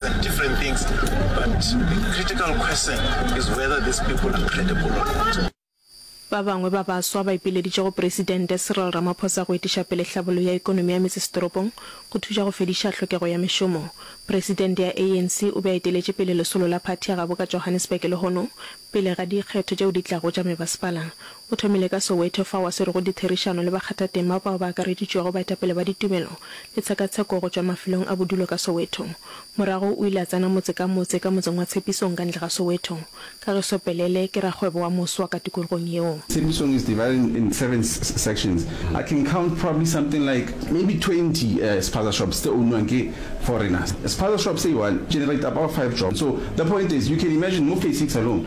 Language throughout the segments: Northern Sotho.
different things but the critical question is whether these people are credible or not. Ba bangwe ba baswa ba ipileditše go Presidente Cyril Ramaphosa go etiša pele hlabollo ya ekonomi ya metsesetoropong go thuša go fediša tlhokego ya mešomo. Presidente ya ANC o be a eteletše pele lesolo la phathi ya gabo ka Johannesburg lehono pele ga dikgetho tšeo di tlago tša mebasepala. O thomile ka Soweto fao a swerego ditherišano le bakgathatema bao ba akareditšwego baetapele ba ditumelo le tshekatsheko go tšwa mafelong a bodulo ka Soweto. Morago o ile a tsena motse ka motse ka motseng wa Tshepisong ka ntle ga Soweto. Kagiso Pelele ke rakgwebo wa moswa ka tikologong yeo. Tshepisong is divided in seven sections. I can count probably something like maybe twenty spaza shops tse ownwang ke foreigners. Spaza shop se i one generator about five jobs. So the point is you can imagine mo phase six alone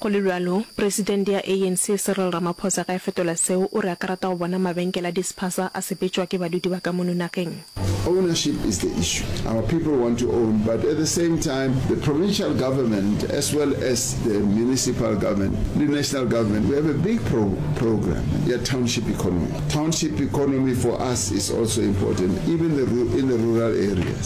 Go le bjalo, presidente ya ANC Cyril Ramaphosa ge a fetola seo, o re a ka rata go bona mabenkele a dispaza a sepetšwa ke badudi ba ka mono nageng. Ownership is the issue. Our people want to own but at the same time the provincial government as well as the municipal government le national government we have a big pro program ya township economy. Township economy for us is also important even the in the rural areas.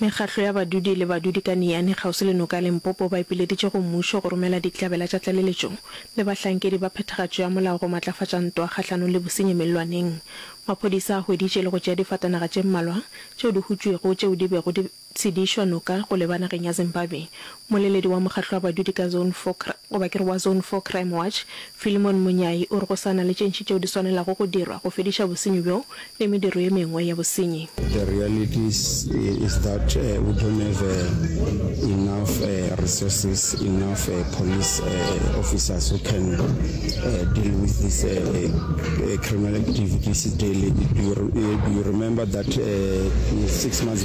Mekgatlo ya badudi le badudi ka Niyane kgauswi le noka ya Limpopo ba ipileditše go mmušo go romela dihlabela tša tlaleletšo le bahlankedi ba phethagatšo ya molao go matlafatša ntwa kgahlanong le bosenyi mellwaneng. Maphodisa a hweditše le go tšea difatanaga tše mmalwa tšeo di hutšwego tšeo di bego di tshedišwa noka go leba nageng ya Zimbabwe. Moleledi wa mokgatlo wa badudi ka Zone four cr goba ke re wa Zone four Crime Watch, Philemon Munyai o re go sa na le tše ntši tšeo di swanelago go dirwa go fediša bosenyi bjo le mediro ye mengwe ya bosenyi. The reality is is that we don't have enough resources, enough police officers who can deal with this criminal activities daily. Do you do you remember that six months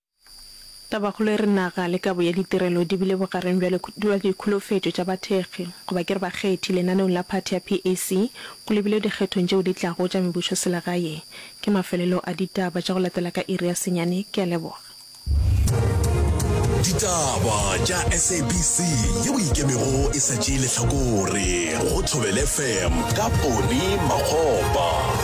Tabakgolo e re naga le kabo ya ditirelo di bile bogareng bjale bja dikholofetšo tša bathekgi, goba ke re bakgethi, lenaneong la phathi ya PAC go lebilwe dikgethong tšeo di tlago tša mebusoselegae. Ke mafelelo a ditaba tša go latela ka iri ya senyane. Ke a leboga. Ditaba tša SABC ye o ikemego e sa tšee lehlakore go Thobela FM ka Pone Makgopa.